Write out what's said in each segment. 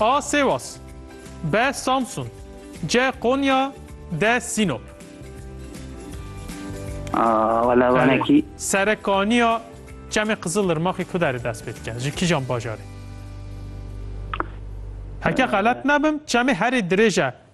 A Sêwas B Samsun C Konya D Sînop Wala vanekî Serekaniya Çemê Qizilirmaxê ku derê dest pê dike? Ji kîjan bajarê? Heke xelet nebim, çemê herî dirêj e.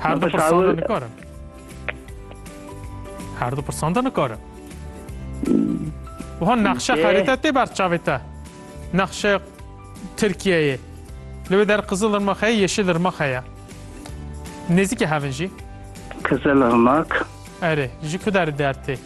Her du pirsan de nikarim. Her du pirsan de nikarim. Wiha nexşe xerîte tê ber çavê te. Nexşe Tirkiyeyê. Li wê der qizil irmak heye, yeşil irmak heye. Nêzîkê hevin jî. Kızılırmak. Erê, ji ku derê der tê?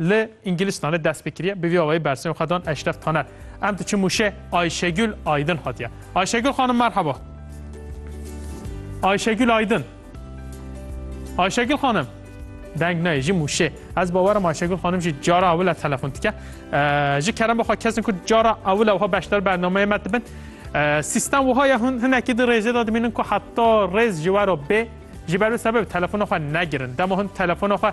Li Îngilistanê dest pê kiriye, bi vî awayî bersivên xwe dan Eşref Taner. Em diçin mûşê Ayşegül Aydin hatiye. Ayşegül xanim merheba. Ayşegül Aydin. Ayşegül xanim. Deng nayê jî mûşê. Ez bawerim Ayşegül xanim jî cara ewil e telefon dike. Ee, Ji kerem bixwe kesin ku cara ewil e wiha beşdar bernameyê me dibin. Ee, Sîstem wiha ye hûn hinekî di rêzê de dimînin ku heta rêz ji we re bê. Ji ber wê sebebê telefona xwe negirin. Dema hûn telefona xwe